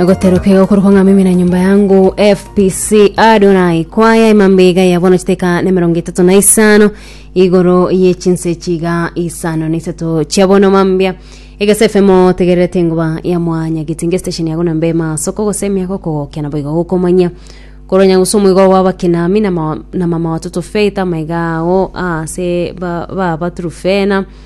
goterokeo korwa ng'a mimi na nyumba yangu fpc adonai kwaya emambe iga ya bono chiteka na emerongo etato na isano igoro ye chinse chiga isano na isato chia bono mambia egese fm tegererete engoba ya mwanya gitinge station yago na mbema soko gose emiago kogokena boiga gokomanya koronya gose omoigo wa bakinami na ma- na mama watoto faith amaiga ago ase ba- baba turufena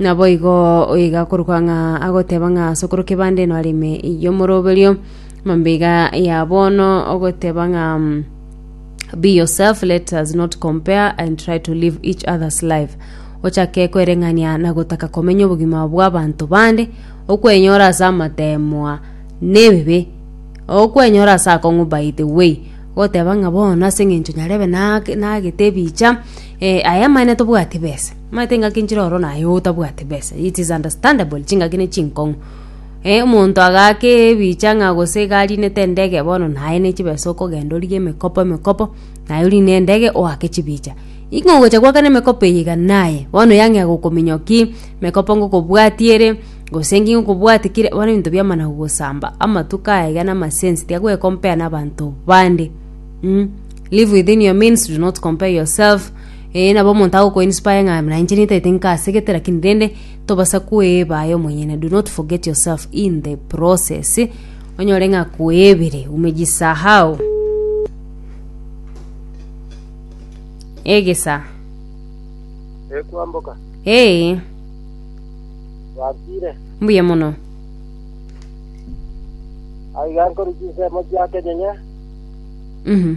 Naboigo igakorokwa ng'a agoteba ng'a ase okoroka ebande eno are ime y'omoroberio, mambaiga ya bono ogoteba ng'a be yourself let us not compare and try to live each other's life ochake kwereng'ania na gotaka komenya obogima bw'abanto bande okwenyora ase amateemwa na ebibe okwenyora ase akong'u by the way goteba ng'a bono ase eng'encho nyarebe nage nagete ebicha eh aya amang'ana tobwati besa. Omanyete engaki nchire oro naye otabwate besa it is understandable chingaki ne chinkong'u eh omonto agaake ebicha ng'a gose iga arinete endege bono naye ne chibesa okogenda orige emekopo emekopo naye orine endege oake chibicha ing'o ogocha goakana emekopo eye iga naye bono yang'ea gokominyoki emekopo ngokobwatia ere gose ngi ngokobwatia kire bono ebinto biamana gogosamba amatuko aya iga na amasense tiga gwe compare na abanto bande mmh live within your means do not compare yourself. Ee, nabo omonto agokoinspire ng'a buna inche nintaete nkaasegete, lakini rende tobasa kweeba aye omonyene. Do not forget yourself in the process. Onyore ng'a akweebire, umejisahau. Egesa. Eh, kwamboka. Ee, Twakire. mbuya mono. Aiga nkori chinsemo chia kenyenye. Mhm.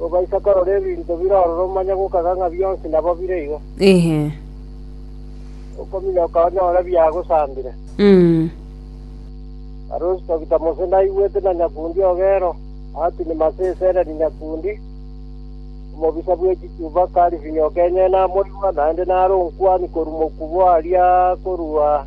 Ogaisa korora ebinto bire ororo omanye gokaga ng'a bionsi nabo bire igo. Ehe. Okominyoka onyore biagosambire. Mm. Arusi togita Mose naigwete na nyakundi ogero, atini mase esereri nyakundi, omobisa bwe chichuba karifinyoka enyene amoigwa, naende nare onkwani korwa mokubo aria korwa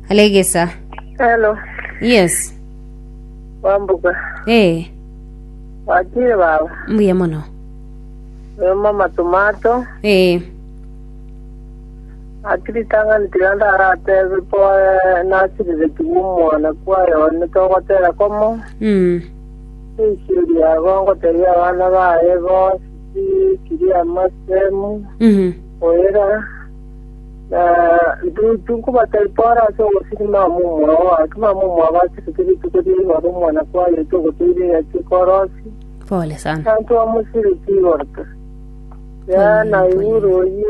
Alegesa. Hello, Yes. wambuga. Eh, Watire baba. mbuya mono. Oyo mama tomato. Eh, Akiri tangani tiga ndaratebe po eh, nasirire tigu omwana kwayo one togotera komo. mm, Eisiri yago ngoteria abana baye bo sisi kiri amasemu. mhm, Oera. Na intwe nkobataipora ase ogosiri mama omwao oake, mama omwao abachiretwe rituko ria igoro omwana kwayeto ogotoira egati ekorosi, Pole sana. na ntwamosireti igoro ta. Yaya naigure oyio